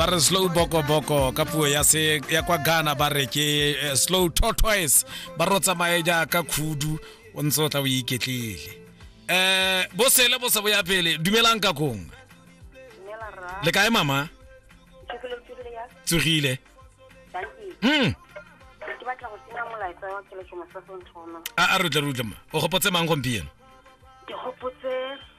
ba re slow boko boko ka puo ya se ya kwa Ghana ba re ke eh, slow tortoise ba ro tsamaye jaaka khudu o ntse o tla o iketlile eh bo sele bo se bo ya pele dumelang ka kong le kae mama tsogile hmm a a re tle re utlema o gopotse mang gompieno ke gopotse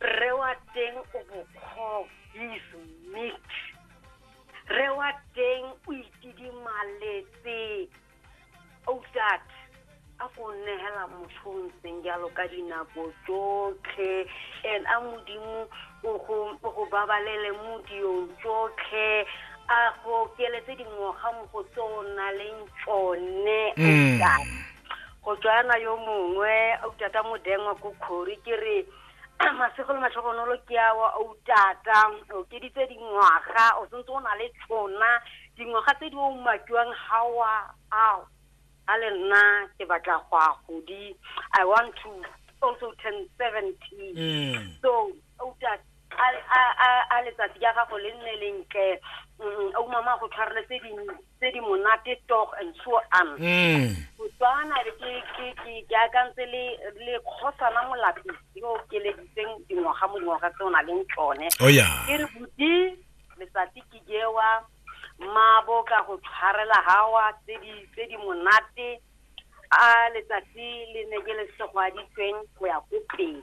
rre wa teng o bokgobo is meat rre wa teng o itidimaletse outat a go nnegela motho o ntseng jalo ka dinako tsotlhe and a modimo o go babalele mo diyong tsotlhe a go keletse dingwaga mo go tse o na leng tsone outat mm. Go tswana yo mongwe a uta ka modengwa ko khori ke re masego le matlhogonolo ke a wa o tata o keditse dingwaga o sentse o na le tshona dingwaga tse di o makiwang ga wa ao a le nna ke batla go a godi i want to also turn seventeen mm. so o tata a letsatsi ya gago le nne lentle mm, o mama go tshwareletse tse di monate tog and so on mm. botswana re ke ke ke ke akantse le le khosana molapi yo keleditseng dingwaga mo dingwaga tse o na leng tsone oh, ke re buti letsatsi ke jewa mmabo ka go tshwarela gawa tse di tse di monate a letsatsi le ne ke le segwaditsweng go ya ko pele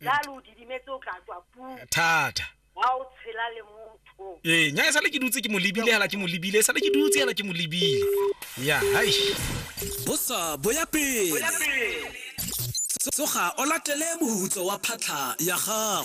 jalo o didimetse o tla tswa puu thata ga o tshela le motho ee nya e sale ke dutse ke mo lebile hela ke mo lebile e sale ke dutse hela ke mo lebile ya hai bosa boya pele tsoga o latele mohutso wa phatlha ya gago